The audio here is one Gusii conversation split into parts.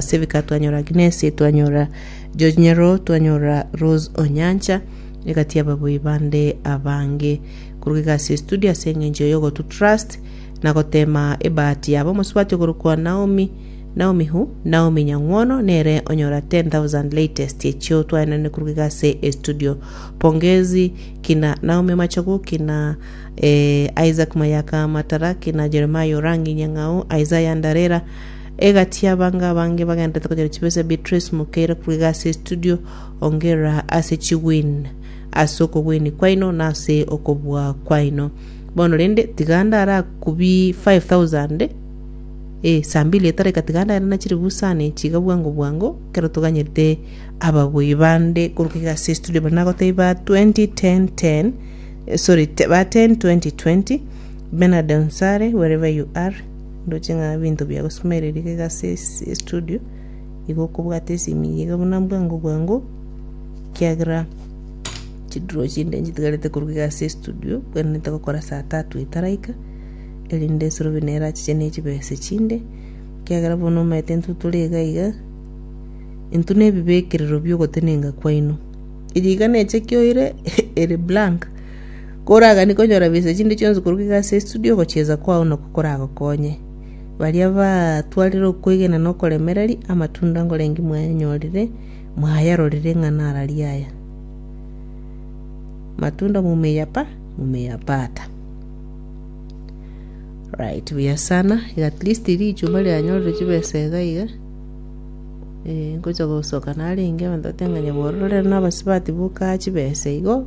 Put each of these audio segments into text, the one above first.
Asebika twanyora Agnes, twanyora George Nyero, twanyora Rose Onyancha, egati ababui bande abange. Koruga iga ase estudio ase eng'encho yogotu trust na gotema ebahati yabo omosubati okorokwa Naomi Naomi who? Naomi Nyang'wono nere onyora 10,000 latest echio twaenane koruga iga ase estudio. Pongezi kina Naomi Machogu kina eh, Isaac Mayaka Matara kina Jeremiah Orangi Nyang'au Isaiah Ndarera Egati y'abange abange bagenderete konyora chibesa chia Beatrice Mukeira korwa egasi ya estudio, ongera ase chigwin ase okogwenia kwaino na ase okobua kwaino. Bono rende tiga ande arakubie 5000 eh, saa mbili etareka tiga ande airane chire busani chiga bwango bwango ekero toganyerete ababui bande korwa egasi ya estudio baria nagotebia ba 201010 eh, sorry, te- ba 102020 Bernard Onsare wherever you are, Ndoche ng'a ebinto bia gosimera eria egasi ase estudio, igo okobwata esimi eye iga buna bwango bwango, ekiagera chidraw chinde nchitigarete korwa egasi ya estudio, bwenerete gokora saa tatu etaraika, erinde esurobe neye erachiche ne chibesa echinde, ekiagera bono omanyete intwe tore iga iga, intwe ne ebibekerero bia ogotenenga kwaino. Eye iga nechekia oire ere blank, Koragani konyora bise chinde chionsi korwa iga ase estudio ogochiesa kwao noko koragokonye. Baria batwarire okwegena na okoremereria amatunda nkorengi mwayanyorire, mwayarorire ng'a nararia aya. Matunda mumeyapa, mumeyapata. Right, buya sana. Iga at least richuma rianyorire chibesa iga iga. Eh, ngocha gosoka narenge abanto bateba ng'a nyabororera rero nabasibati boka chibesa igo.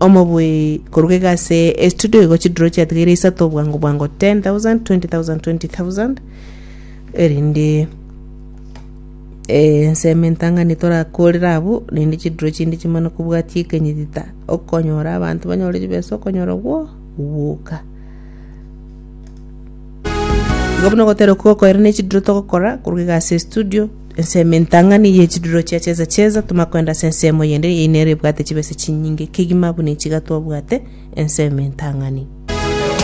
Omobui koruga iga ase estudio igo chiduro chiatigaire isato obwango bwango 10000 20000 20000 erinde eh, nseme entang'ani torakorera abwo rinde chiduro chinde chimana kobwatia ekenyitita okonyora abanto banyore chibesa okonyora gwo gwoka igo buna ogotera okogokoera ne chiduro togokora koruga iga ase estudio ensemo entang'ani ye chiduro chia chesa chesa, toma kwenda ase ensemo eyende eyio nere ebwate chibesa chinyinge kegima buna echi iga twabwate ensemo entang'ani.